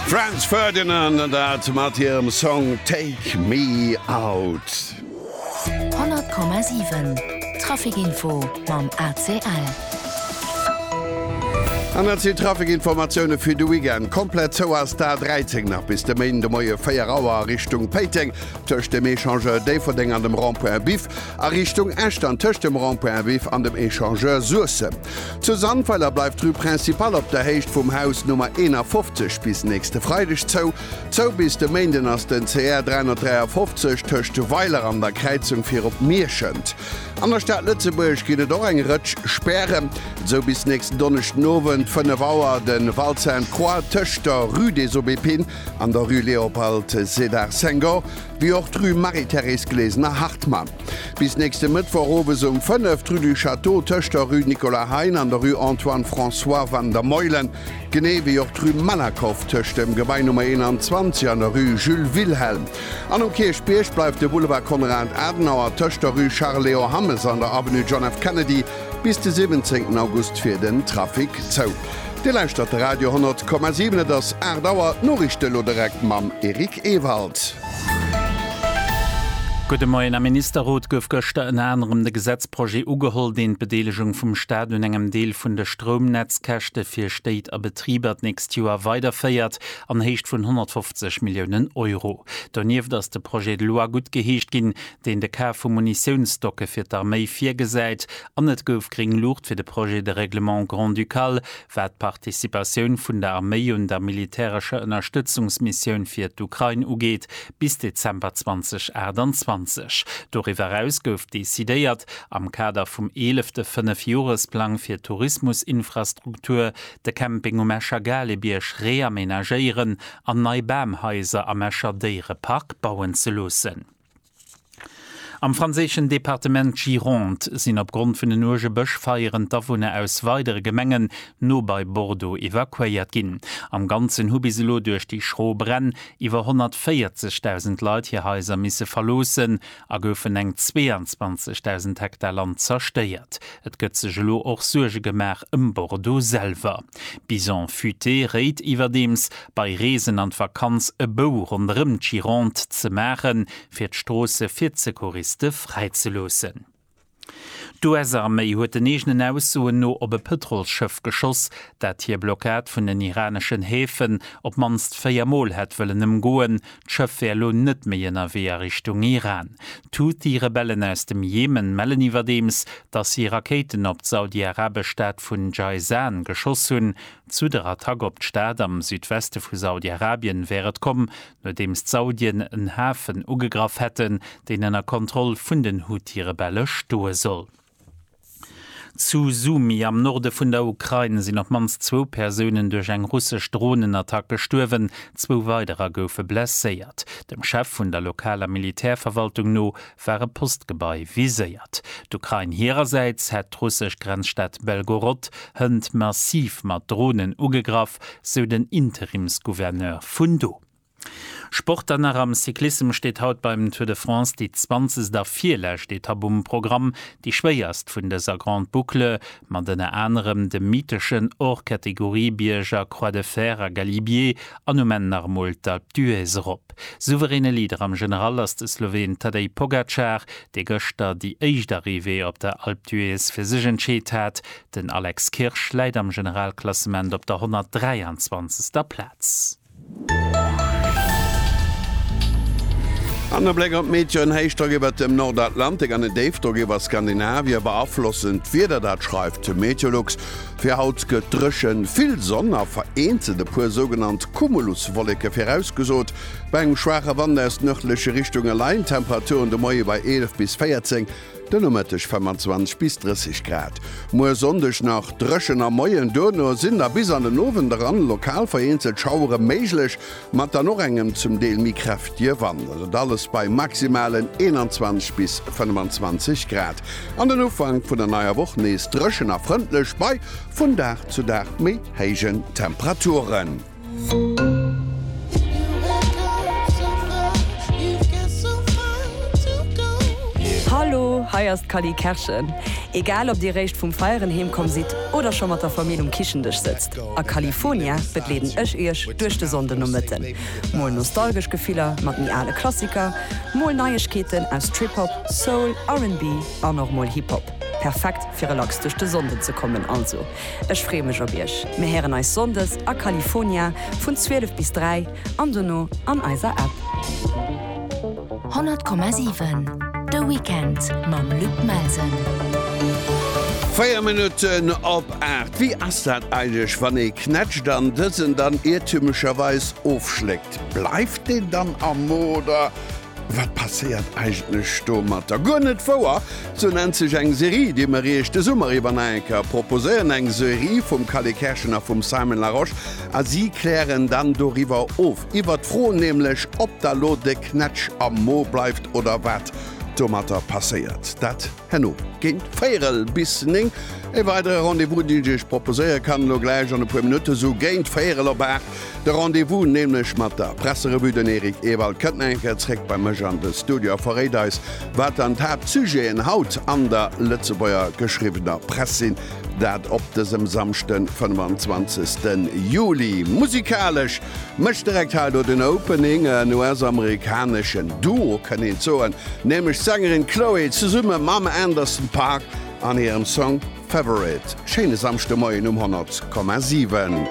Franz Ferdinand an dat mat hirem Song Take me out. 100,7 Trafikinfo mam ACL. An dat sinn d'Trafikinformatioune fir de Weekend. Komplett zou ass d'A 13 nach bis de Méinde Moie 4 Auer a Richtung Péiteng, tëscht dem Echangeur Déifferdeng an dem Rond-point Biff, a Richtung Esch dann tëscht dem Rond-point Biff an dem Echangeur Suessem. Zu Sandweiler bleift d'Rue Principale op der Héicht vum Haus Nummer 51 bis nächste Freideg zou. Zou bis de Méinden ass den CR 353 tëscht Weiler an der Kräizung fir op Mierschent. An der Stad Lëtzebuerg ginn et och eng Rëtsch Spären. Zou bis nächsten Donneschden Owend 5 Auer de Val Sainte Croix tëscht der Rue des Aubépines an der Rue Léopold Sédar Senghor, wéi och d'Rue Marie-Thérèse Glesener-Hartmann. Bis nächste Mëttwoch owes um 5 d'Rue du Château tëscht der Rue Nicolas Hein an der Rue Antoine François van der Meulen, genee wéi och d'Rue Malakoff tëscht dem Gebai Nummer 21 an der Rue Jules Wilhelm. An um Kierchbierg bleift de Boulevard Konrad Adenauer tëscht der Rue Charles Léon Hammes an der Avenue John F. Kennedy bis de 17 August fir den Trafic zou. Dir lauschtert de Radio 10,7, et ass 8 Auer, d'Noriichte elo direkt mam Eric Ewald. Gudde Moien. Am Ministerrot gouf gëschter ënner anerem de Gesetzprojet ugeholl, deen d'Bedeelegung vum Staat un engem Deel vun de Stroumnetzkäschte fir Stéit a Betriber d'nächst Joer weiderféiert an Héicht vun 150 Milliounen Euro. Donieft ass de Projet de loi guttgeheescht ginn, deen de Kaf vu Munitiounsstocke fir d'Arméi virgesäit an et gouf gréng Luucht fir de Projet de règlement grand-ducal Wat d'Participatioun vun der Arméi un der militärescher Ënnerstëtzungsmissioun fir d'Ukrain ugeet, bis Dezember 2028. Doriwwer eraus gouf decidéiert, am Kader vum eelefte Fënnefjoresplang fir d'Tourismusinfrastruktur, de Camping um Escher Galebierg reamenagéieren an nei Bamhaiser am Escher Déierepark bauen ze loossen. Am franséischen Departement Gironde sinn opgrond vun den uerge Bëschfeieren d'Awunner aus weidere Gemengen no bei Bordeaux evakuéiert ginn. Am Ganzen hu bis elo duerch déi schro Bränn iwwer 140.000 Leit hir Haiser misse verloossen a goufen eng 22.000 Hektar Land zerstéiert. Et gëtt sech elo och Suerge gemaach ëm Bordeaux selwer. Bison futé réit iwwerdeems, bei Reesen an d'Vakanz e Bou ronderëm d'Gironde ze maachen, fir d'Stroosse fir d'Secouriste fräi ze loossen. D'US-Arméi huet den eegenen Aussoen no op e Pëtrolsschëff geschoss, dat hir Blockad vun den iraneschen Häfen op d'mannst véier Mol hätt wëllen ëmgoen, D'Schëff wär elo net méi ënnerwee a Richtung Iran. D'Houthi-Rebellen aus dem Jemen mellen iwwerdeems, datt si Rakéiten op d'saudi-arabesch Stad vun Jayzan geschoss hunn. Zu der Attack op d'Stad am Südweste vu Saudi-Arabien wär et komm, nodeems d'Saudien en Hafen ugegraff hätten, deen ënner Kontroll vun den Houthi-Rebelle stoe soll. Zu Sumy am Norde vun der Ukrain sinn op d'mannst zwou Persounen duerch eng russesch Dronenattack gestuerwen, zwou weiderer goufe blesséiert. Dem Chef vun der lokaler Militärverwaltung no war e Postgebai viséiert. D'Ukrain hirersäits hätt d'russesch Grenzstad Belgorod hënt massiv mat Dronen ugegraff, sou den Interimsgouverneur vun do. Sport an nach am Cyclissem steet haut beim Tour de France déi zwanzegst a virlescht Etapp um Programm, déi schwéierst vun dëser Grande Boucle, mat ënner anerem dem mytheschen Hors-Catégorie-Bierg a Croix de Fer a Galibier an um Enn nach emol d'Alpe d'Huez erop. Souveräne Leader am General ass de Sloween Tadej Pogacar, dee gëschter déi éischt Arrivée op der Alpe d'Huez fir sech entscheet hat. Den Alex Kirsch läit am Generalklassement op der 123. Plaz. An e Bléck op d'Meteo, En Héichdrock iwwert dem Nordatlantik an en Déifdrock iwwer Skandinavie beaflossen d'Wieder, dat schreift de Meteolux. Fir haut gëtt dréchen, vill Sonn a vereenzelt e puer sougenannt Cumuluswolleke virausgesot. Bei engem schwaache Wand aus nërdleche Richtunge leien d'Temperature de Moie bei 11 bis 14, De Nomëtteg 25 bis 30 Grad. Muer Sonndeg nach dréchen am Moien, duerno sinn da bis an den Owend eran lokal vereenzelt Schauere méiglech, mat dann och engem zum Deel méi kräftige Wand. Dat alles bei Maximalen 21 bis 25 Grad. An den Ufank vun der neier Woch nees dréchen a frëndlech, bei vun Dag zu Dag méi héijen Temperaturen. Hallo, hei ass d'Cally Kerschen. Egal ob dir réischt vum Feieren heem komm sidd oder scho mat der Famill um Kichendësch sëtzt, a Califonia begleeden ech iech duerch de Sonndenomëtten. Mol nostalgesch Gefiller mat méi ale Klassiker, mol Neiegkeeten aus Trip-Hop, Soul, RB an och mol Hip-Hop. Perfekt fir relax duerch de Sonnden ze kommen also. Ech freeë mech op iech. Mir héieren eis Sonndes a California vun 12 bis 3 an dono an eiser App. 100,7 De Weekend mam Luc Melsen. Véier Minutten op aacht. Wéi ass dat eigentlech wann ee knätscht an dësen dann iertümlecherweis ofschléckt? Bleift deen dann am Mo oder Wat passéiert eigentlech domatter? Guer net wouer! Sou nennt sech eng Serie, déi mer Iech de Summer iwwer nach eng Kéier proposéieren. Eng Serie vum Kalle Kerschen a vum Simon Larosche a si klären dann doriwwer of, iwwer d'Fro nämlech, ob da lo de Knätsch am Mo bleift oder wat domatter passéiert. Dat. Herno géint véierel bis néng e weidere Rendez-vous, deen ech Iech proposéiere kann. Elo gläich an e puer Minutte sou géint véierel op aacht de Rendez-vous, nämlech mat der Presserevue. Den Eric Ewald kënnt nach eng Kéier zréck bei mech an de Studio a verréit eis, wat dann d'Haaptsujeten haut an der Lëtzebuerger geschriwwener Press sinn. Dat op dësem Samschden, 25. Juli. Musikalesch Mécht direkt hei do den Opening, en US-amerikaneschen Duo kënnt een soen, nämlech d'Sängerin Chloe zesumme mam Anderson Paak an hirem Song Favorite. Schéine Samschdemoien um 100,7.